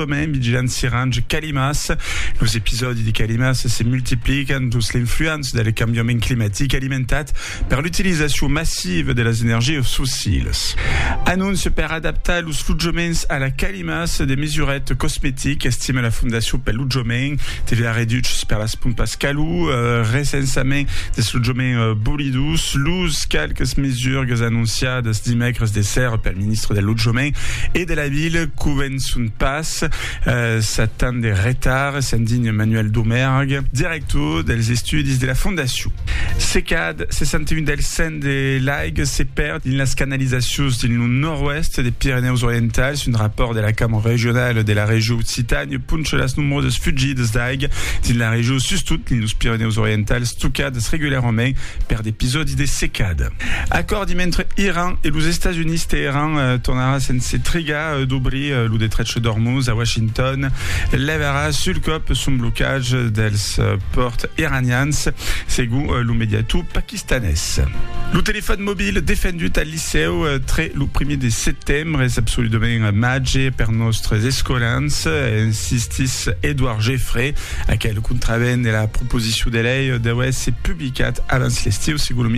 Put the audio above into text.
Còme Midgène Sirange Calimas, los episòdi de calimas se multiplican dins l'influença del cambiament climatic alimentat per l'utilizacion massiva de las energias fossilas. Anóncia per adaptar los lotjaments a la calimas de mesuret cosmetic, estima la Fondacion pel Lotjament, TVA reduches per las pompas calor, recensament dels lotjaments bolidos, los qualques mesurgues anonciadas dimècres de sèrra pel ministre del Lotjament e de la Vila, Son pas sat tant de retard, se'n digna Manuel Domergue, director dels estudis de la fondacion. Se cad 61 del cent de l'aiga se perd dins las canalizacions dins lo nòrd-oèst de Pirenèus Orientals, un rapòrt de la Cambra Regionala de la Region Occitània poncha las nombrosas fugidas d'aiga dins la region, sustot dins los Pirenèus Orientals, tocadas regularament per d'episòdis de secada. Acòrdi mentre Iran e los Estats Units Teheran tornarà sense trigar d'obrir lo detrech d'Ormuz a Washington levarà sul còp son blocatge dels pòrts iranians segon lo mediator paquistanés. Lo telefòn mobil defendut al licèu tre lo primièr de setembre es absoludament màger per nòstres escolans, insistís Edouard Geffray. Aquel contravent de la proposicion de lei deu èsser publicat avans l'estiu segon lo ministre.